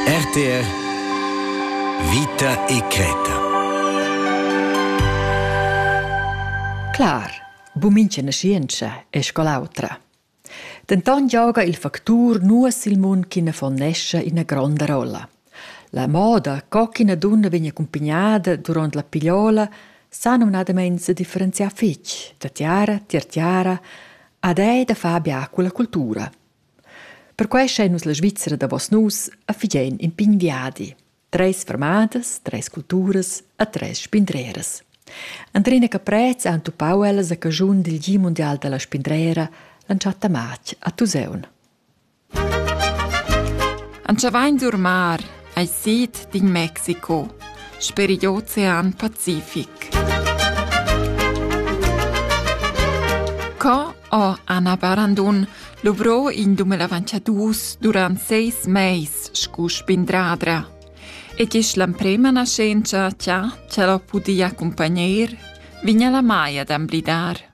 RTR Vita e creta. Clar, bumincha nascientscha è scol'autra. Denton gioga il factur nuas il mund ch'ina fonnescha ina gronda rolla. La moda co ch'ina dunna vegn accompagnada durant la pigliola sa numnadament se differenziar fitg da tiara, tier tiara, ad è da far bia con la cultura. Perquai schain nus la Svizra davos nus e figein in pign viadi. Treis fermadas, treis culturas e treis spindreras. Andrina Caprez ha entupau ellas a caschun dil Gi mundial dalla spindrera l'entschatta matg a Tuseun. Antschavain d'Urmar Ei sid d'in Mexico sper igl Ocean Pacific. Co ho Anna Barandun luvrò in dumelavanciadus durant seis meis scu spindradra. E gis l'emprema nascenza cha ch'el ho pudi accumpagner, vigna la Maia d'amblidar.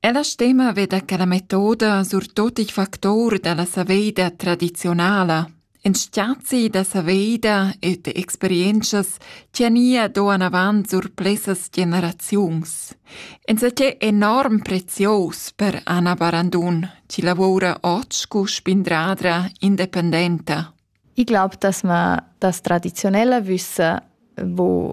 Ella stema veda che la metoda surtut il factor dalla saveida tradizionala, in stiazi da saveida e de experientschas che nia do anavant sur plessas generaziuns. Insatgé enorm prezios per Anna Barandun, chi lavora oggi cu spindradra independenta. Ich glaube, dass man das traditionelle Wissen, wo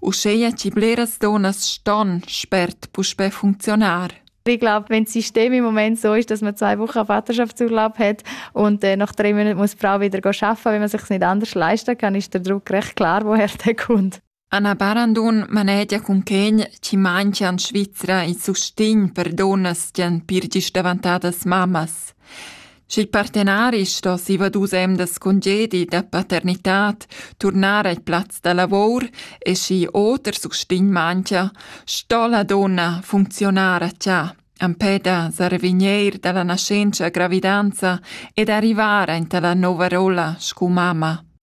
Uscheia chi bleras donas ston spert puspè funcziunar. Ich glaube, wenn das System im Moment so ist, dass man zwei Wochen Vaterschaftsurlaub hat und äh, nach drei Monaten muss die Frau wieder arbeiten, wenn man sich nicht anders leisten kann, ist der Druck recht klar, woher der kommt. Anna Barandun manegia cun quegn chi manchia in Svizra i sustign per donnas gian pirgis davantadas mammas. sch'il partenari sto siva dus emdas congedi da paternitad turnar al plaz da lavor e schi oter sustign manchia, sto la donna funcziunar a cha empè da sarvigneir da la naschentscha gravidanza ed arrivar aint a la nouva rolla scu mamma.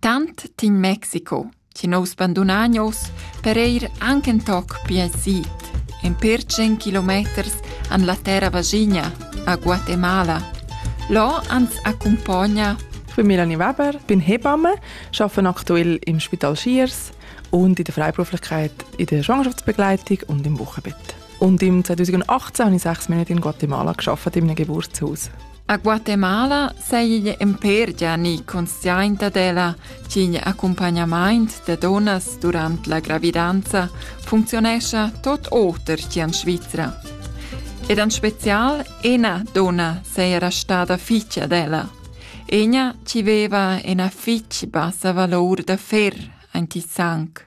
Tant tin Mexico chi nous bandunagnos per eir anc ün toc più sid, ün pêr tschient kilometers an la terra vaschigna, a Guatemala. Là ans accumpogna Für Melanie Weber bin Hebamme, arbeite aktuell im Spital Schiers und in der Freiberuflichkeit in der Schwangerschaftsbegleitung und im Wochenbett. Und im 2018 habe ich sechs Monate in Guatemala gearbeitet, in einem Geburtshaus. A Guatemala seigi empèr Gianni conscient dad ella ch'igl accumpagnamaint da dunnas durant la gravidanza funcziunescha tot oter che en Svizra. Ed en spezial ena donna seira stada fitg ad ella. Ena chi veva ena fitg bassa valor da fer, ein ti sanc.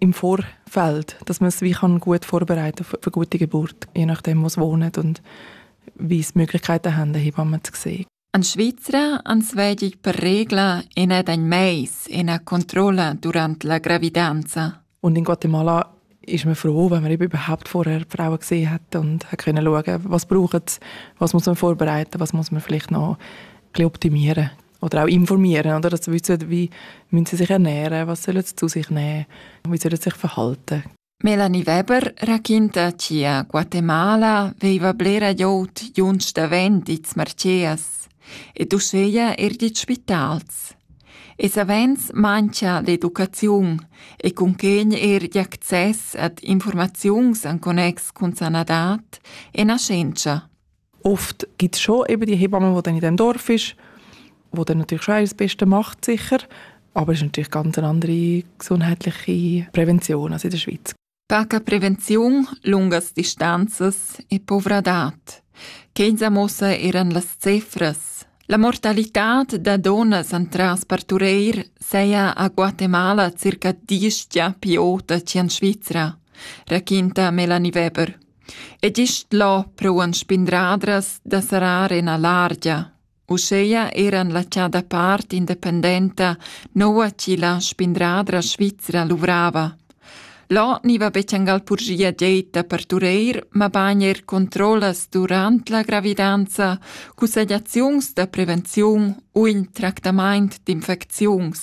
im Vorfeld, dass man es wie kann gut vorbereiten für, für eine gute Geburt, je nachdem, wo sie wohnen und wie sie Möglichkeiten haben, Hebammen zu sehen. An Schweizer ans vedi per regla ina den mais ina Kontrolle durante la gravidanza. Und in Guatemala ist man froh, wenn man eben überhaupt vorher Frauen gesehen hat und können schauen, was braucht was muss man vorbereiten, was muss man vielleicht noch optimieren. oder auch informieren, oder? Also wissen, wie müssen sie sich ernähren, was sollen sie zu sich nehmen, wie sollen sie sich verhalten. Melanie Weber racconta che a Guatemala veiva blera glieud junts davent its marcias ed uscheia er dit spitals. E savens mancha l'educaziun e cunquegn er d'access ad informaziuns en connex cun sanadat e nascenza. Oft gibt es schon eben die Hebamme, die dann in diesem Dorf ist, wo dann natürlich schon das Beste macht, sicher. Aber es ist natürlich ganz eine andere gesundheitliche Prävention als in der Schweiz. Taka prevenziun lungas distanzas e povradad. Kenza mossa eran las cifras. La mortalità da donas entras partureir seia a Guatemala circa diestia piota cian Svizra, raquinta Melanie Weber. Ed isch là prouan spindradras da sarar en a largia. Uscheia eran la chada part independenta noua chi la spindradra svizra luvrava. Là niva betjangal purgia deita per tureir, ma bagn er controllas durant la gravidanza, cussegliaziuns da prevenziun u in tractamaint d'infecziuns.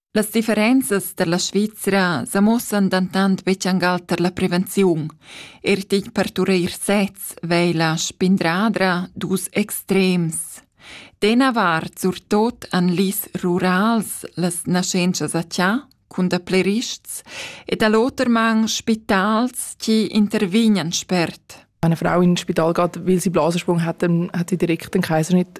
Las differenzas tar la Svizra sa muossan dentant betg angal tar la prevenziun. Er tig partureir sez vei la spindradra dus extrems. Dena vart surtot an lis rurals las naschentschas a tia, cun da plerists, ed all'oter man spitals, die intervignan spert. Wenn eine Frau in ein Spital geht, weil sie Blasensprung hat, dann hat sie direkt den Kaiser nicht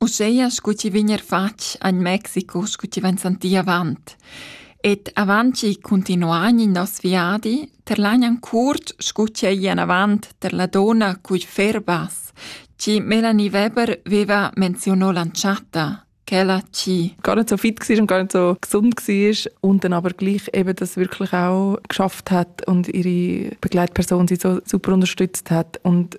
Uscheia scu chi vegn eir fatg agn Mexico scu chi vain santì avant. Ed avant chi cuntinuan in nos viadi terlagnan curt scu chi ei anavant tar la donna cugl ferbas, chi Melanie Weber veva menziono l'antschatta, quella chi gar nicht so fit war und gar nicht so gesund war und dann aber gleich eben das wirklich auch geschafft hat und ihre Begleitperson sie so super unterstützt hat und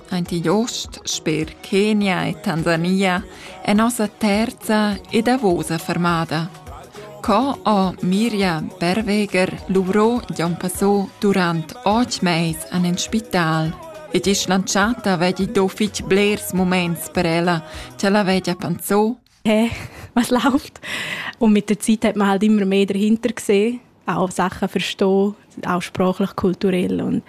Aint igl ost, sper Kenia e Tansania, è nossa terza e davosa fermada. Co ho Mirja Berweger luvrò Jon Passò durant otg mais an en spital ed isch lantschata vegli do fitg blers muments per ella, cha la vegia panzò hey, was läuft? Und mit der Zeit hat man halt immer mehr dahinter gesehen, auch Sachen verstehen, auch sprachlich, kulturell und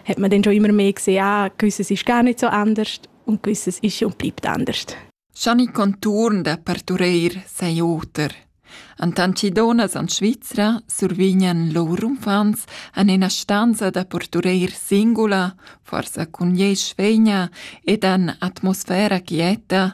hat man dann schon immer mehr gesehen, ah, gewisses ist gar nicht so anders und gewisses ist und bleibt anders. Gianni Contourn da partureir sei oter. Antantidona en Svizra survignan lur umfants en ina stanza da portureir singula, forsa cun ei svegna ed en atmosfera quieta,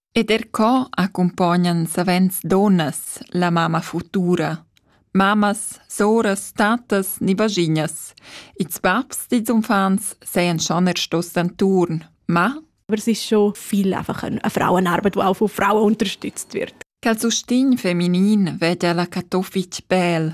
Ed er co accumpognan savens dunnas la mamma futura, mammas, soras, tattas ni vaschignas. Ils babs dils uffants sajan schon er stos d'enturn, ma Aber es ist schon viel einfach eine Frauenarbeit, die auch von Frauen unterstützt wird. Quel sustegn feminin vede la Katowic bel.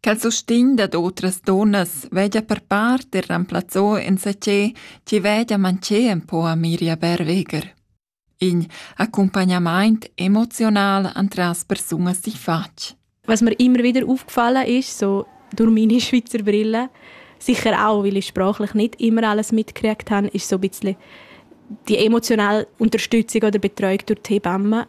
Quel sustegn dad otras dunnas vegia per part er remplazzò insatgè chi vegia manchè ün po a Miria Berweger. In accumpagnamaint emoziunal antras persunas di fatg. Was mir immer wieder aufgefallen ist, so durch meine Schweizer Brille, sicher auch, weil ich sprachlich nicht immer alles mitgekriegt habe, ist so ein bisschen die emotionale Unterstützung oder Betreuung durch die Hebamme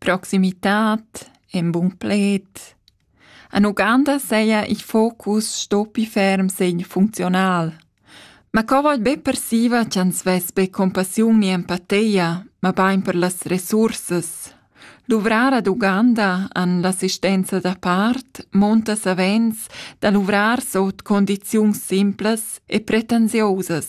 Proximitat, en bun pled. En Uganda seia il focus stoppi ferm segn funzional. Ma co vai be persiva ch'ans vess be compassiun ni empateia, ma bain per las resursas. Luvrar ad Uganda an l'assistenza da part monta savens da luvrar sot condiziuns simplas e pretensiosas.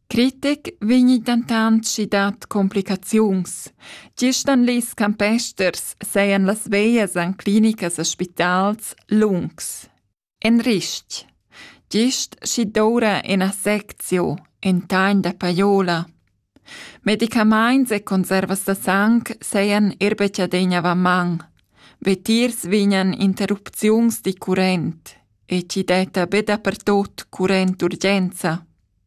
Critic vegni dentant schi dad complicaziuns. Gist en ils campesters sajan las veglias en clinicas e spitals lungs. En ristg. Gist schi doura ina seczio, in tagn da paiola. Medicamaints e conservas da sang sajan er betschadegna va man. Vetiers vignan interrupziuns di current e ci detta be dapertot current urgenza.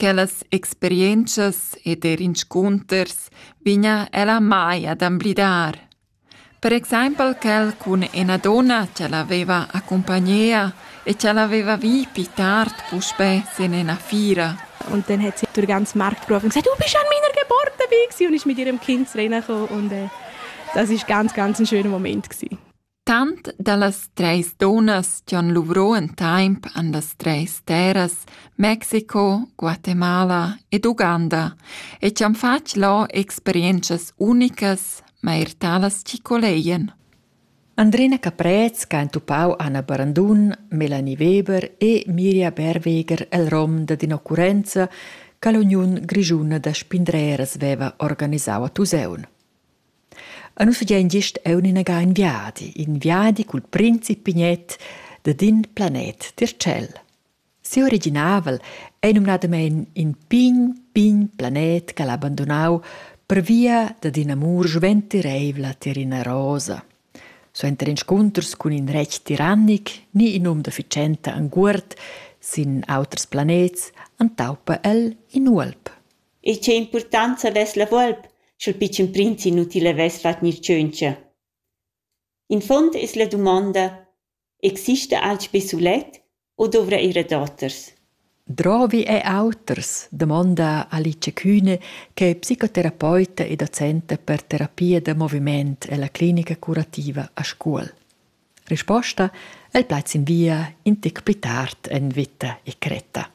Quellas experientschas ed er inscunters vegna ella mai ad emblidar. Per exempel quel cun ina donna che l'aveva accumpagnea e che l'aveva vi pli tard puspè sin ina fiera. Und dann hat sie durch den ganzen Markt gerufen und gesagt, du bist an meiner Geburtstag gewesen. Und ist mit ihrem Kind reingekommen und äh, das war ganz, ganz ein schöner Moment gewesen. Tant dallas treis dunnas chi han luvrò in taimp han las treis terras Mexico, Guatemala ed Uganda e chi han fatg là experientschas unicas, ma eir talas chi colegian. Andrina Caprez ch'ha entupau Anna Barandun, Melanie Weber e Miria Berweger el rom dad in'occurrenza che l'Uniun grischuna da spindreras veva organisau a Tusaun. E nus fagein gist aunc inaga in viadi, in viadi cul prinzi Pignet dad in planet tier tschel. Siu originavel ei numnadamein in pign, pign planet che ha abbandonau pervia dad ina amur sventireivla tier ina rosa. Suenter inscunters cun in retg tirannic ni in um da fitschenta enguord sin auters planets entaupa el in uolp. e tgei impurtonza vess la volp sch'il pitschen prinz inutil havess fatg tscheuncia? In fond es la dumonda: exista alch be sulet u dovra era daoters? Drovi e auters? Damonda Alice Kühne, che è psicoterapeuta e docenta per terapia da moviment ella clinica curativa a Scuol. Risposta: El plaz in via in tic pli tard en vita e cretta.